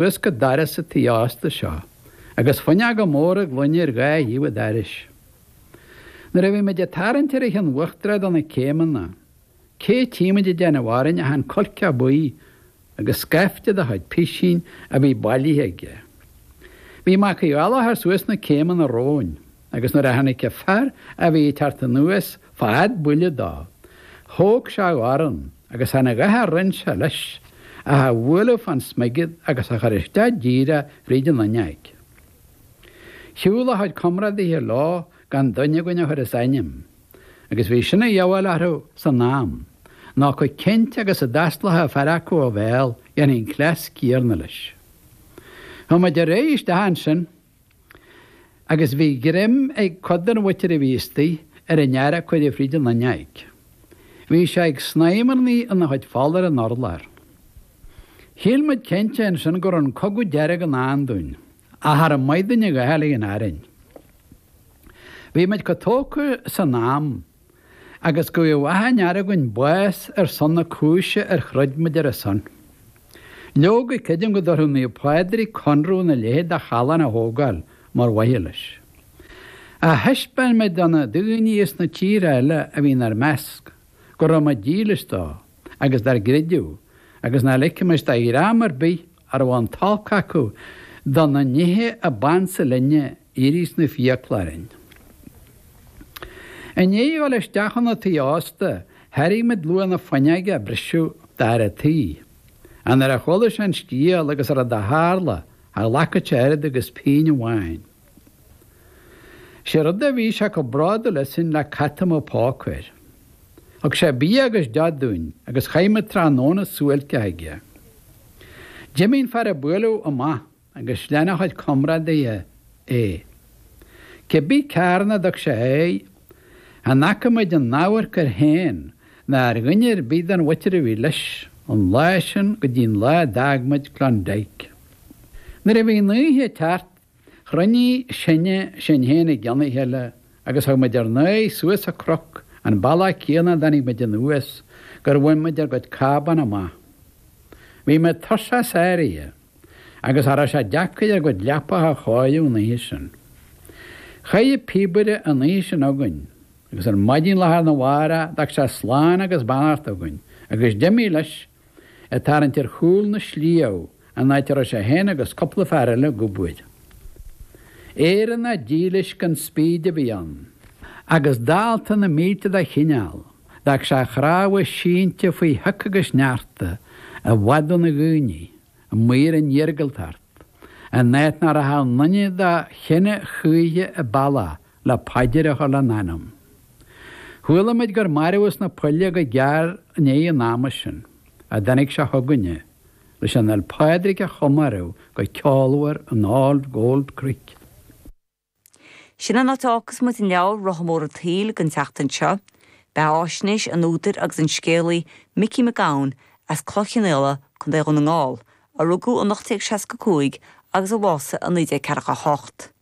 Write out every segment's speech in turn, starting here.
Suas go doras an tí ósta seo agus fuinneoga móra gloine ar dhá thaobh an dorais. Nuair a bhí muid ag tarraingt ar an cheann uachtarach de na céimeanna, cé tímid ag déanamh orainn ach an cuilceach buí agus scaifte dá chuid pisín a bhí bailithe aige. Bhí Mac Uí Fhaoláthar suas na céimeanna romhainn. Agus nuair a tháinig an fear a bhí ag teacht anuas fad buille dó, thóg sé a dhorn agus chan a dhath a rinne sé leis, ach a bhualadh fán smigead agus a chur isteach díreach fríd an fhuinneaig. Shiúl a chuid comrádaithe leo gan duine againn a chur as a ainm, agus bhí sin de shábháil orthu san am, nó chomh cinnte agus a d'fhosclódh fear acu a bhéal, dhéanfaí an cleas céanna leis. Chuaigh muid ar aghaidh isteach ansin. Agus bhí greim ag cuid den mhuintir a bhí istigh ar an fhear a cuireadh fríd an fhuinneaig. Bhí sé ag snaidhmearnaí ina chuid fola ar an urlár. Shíl muid cinnte ansin go raibh an cogadh dearg i ndán dúinn, ach char mhaith linn a dhath eile in Éirinn. Bhí muid chomh tógtha san am. agus go bhfaigheadh achan fhear againn bás ar son na cúise ar throid muid ar a son. Leoga, creidim go dtabharfadh Naomh Pádraig conradh ina leithéid de challán a thógáil mar mhaithe leis. Ach thaispeáin muid do na daoine as na tíortha eile a bhí inár measc go raibh muid dílis dó agus dár gcreideamh agus nach ligfimis do dhream ar bith a raibh an t-olc acu do na nithe a b'ansa linne ins na fiacla orainn. I ndiaidh a dhul isteach ina tigh ósta, thairg muid luach na fuinneoige a briseadh d'fhear an tí. An uair a chuala sé an scéal agus an rud a tharla, cha ghlacfadh sé oiread agus pínn amháin. Sé rud a bhí sé chomh bródúil asainn le cat a mbeadh póca air. Thug sé bia agus deoch dúinn agus chaith muid tráthnóna suáilceach aige. D'imigh an fear a buaileadh amach. agus lean a chuid comrádaithe é. Cé bith cearn a dtug sé air, chan fhaca muid aon amharc air féin ná ar dhuine ar bith den mhuintir a bhí leis, ón lá sin go dtí'n lá a d'fhág muid Klondike? Nuair a bhí an oíche ag teacht, chruinnigh sinne sinn féin i gcionn a chéile agus thug muid ár n-aghaidh suas an cnoc, an bealach céanna a dtáinig muid anuas, gur bhain muid ár gcuid cábán amach. Bhí muid tuirseach sáraithe. agus cha raibh sé deacair ár gcuid leapacha a chóiriú an oíche sin. Chaith an píobaire an oíche sin againn agus ar maidin lá arna mhárach d'fhág sé slán agus beannacht againn agus d'imigh leis, ag tarraingt ar chúl na sliabh, an áit a raibh sé féin agus cúpla fear eile ag obair. Éireannach dílis gan spíd a bhí ann, agus dalta na mílte dá chineál. D'fhág sé a chnámha sínte faoi shioc agus shneachta, i bhfad óna dhaoine, amuigh ar an iargúltacht, in áit nach rachadh aon duine dá chine choíche an bealach le paidir a chur lena anam. Chuala muid gur marbhadh sna poill é go gearr i ndiaidh an ama sin a dtáinig sé chugainne leis an Fhéile Pádraig a chomóradh go ceolmhar in All Gold Creek. Sin an áit a fhágfas muid an leabhar Rotha Mór an tSaoil don tseachtain seo, beathaisnéis an údair agus an scéalaí Micí Mac Gabhann as Cloich Chionnaola, Co. Dhún na nGall, a rugadh in 1865 agus a bhásaigh in 1948.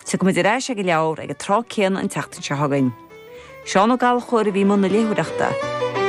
Tiocfaimid ar ais ag an leabhar ag an tráth céanna an tseachtain seo chugainn. Seán Ó Gallchóir a bhí i mbun na léitheoireachta.